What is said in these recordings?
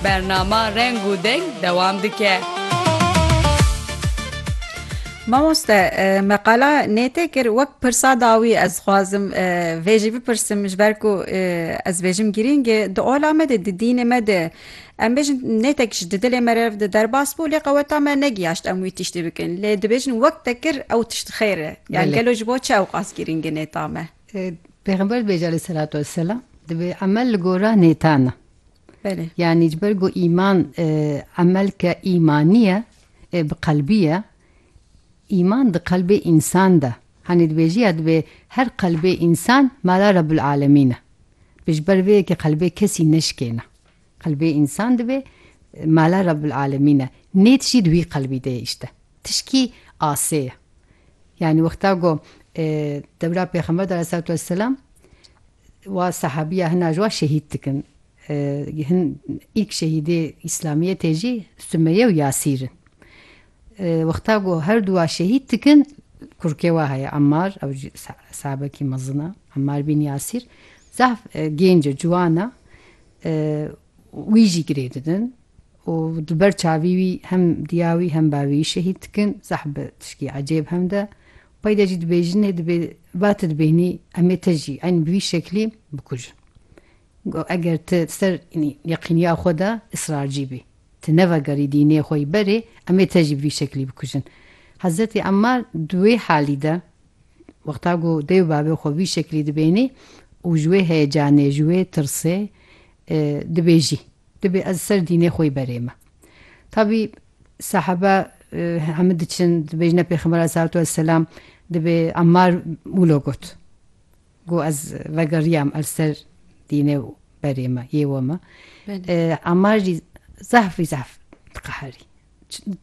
Bernama Reng û Deng dewam dike. Mamoste me qala nêtê kir wek pirsa dawî ez xwazim vê jî bipirsim ji ber ku ez bêjim girîng e di ola me de di dînê me de em bêjin nêtek ji di dilê me re di derbas bû lê qeweta me negiyaşt em wî tiştî bikin lê dibêjin wek te kir ew tişt xêr e yan gelo ji bo çi ew qas girîng e nêta me. Pêxember dibêje aleyhî selatu wesselam dibê emel li gora nêtan e. Belê. Yanî ji ber ku îman emelke îmanî ye, bi qelbî ye. Îman di qelbê însan de. Hanî dibêjî ya dibê her qelbê însan mala Rebbul Alemîn e. Dibê ji ber vê yekê qelbê kesî neşikêne. Qelbê însan dibê mala Rebbul Alemîn e. Nê tiştî di wî qelbî de ye îşte. Tişkî asê ye. Yanî wexta ku dewra Pêxember de aleyhîsselatu wesselam Wa sahabiya hina ji wa şehîd dikin. Hin îlk şehîdê îslamiyetê jî Sumeye û Yasîr in. Wexta ku her du wa şehîd dikin kurkê wa heye Emmar ew jî sahabekî mezin e Emmar bîn Yasîr zaf gênc e ciwan e wî jî girê didin û di ber çavî wî hem diya wî hem bavê wî şehîd dikin zaf bi tişkî ecêb hemd e Peyda jî dibêjinê dibê ba tu dibêhnî em ê te jî eynî bi vî şeklî bikujin. Got eger tu li ser enî yeqîniya xwe de israrcî bî, tu nevegerî dînê xwe yî berê em ê te jî bi vî şeklî bikujin. Hezretê Emmar di wê halî de wexta ku dê û bavê xwe vî şeklî dibêhnî û ji wê heyecanê ji wê tirsê dibêjî dibê ez li ser dînê xwe yî berê me. Tabî Sahaba hemû diçin dibêjine Pêxember aleyhissalatu wesselam dibê Emmar wilo got. Got ez vegeriyam er ser dînê berê me yê we me. Emmar jî zehfî zehf diqeherî.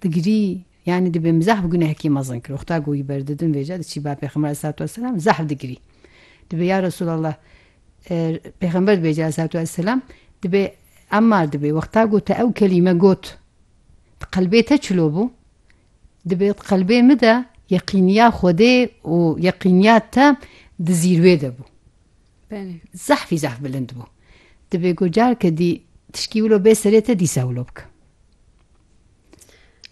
Digirî yani dibê min zehf gunehekî mezin kir. Xta got wî berdidin vêca diçî ba Pêxember aleyhissalatu wesselam zehf digirî. Dibê ya Resulallah Pêxember dibê aleyh selatû ve selam dibê Emmar dibê wexta ku te ew kelîme got di qelbê te çilo bû? Dibê di qelbê min de yeqîniya Xwedê û yeqîniya te di zîrwê de bû. Belê. Zehfî zehf bilind bû. Dibê ku careke dî tişkî wilo bê serê te dîsa wilo bike.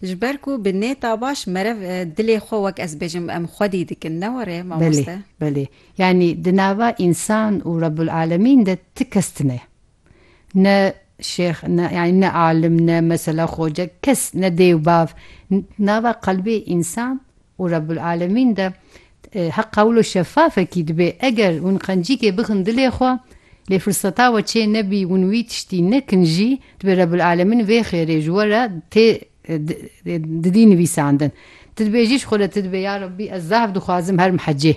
Ji ber ku bi nêta baş merev dilê xwe wek ez bêjim em xwedî dikin ne were mamoste? Belê belê yanî di nava însan û Rebul Alemîn de ti kes tine ne şêx ne yanî ne alim ne mesela xoce kes ne dêw bav di nava qelbê însan Û Rebbul'Alemîn de hek qewl û şefafekî dibe. Eger hûn qencîkê bixin dilê xwe, lê firseta we çê nebî, hûn wî tiştî nekin jî, dibe Rebbul'Alemîn vê xêrê ji we re tê didî nivîsandin. Tu dibêjî ji xwe re, tu dibê, Ya Rebbî, ez zaf dixwazim herim hecê.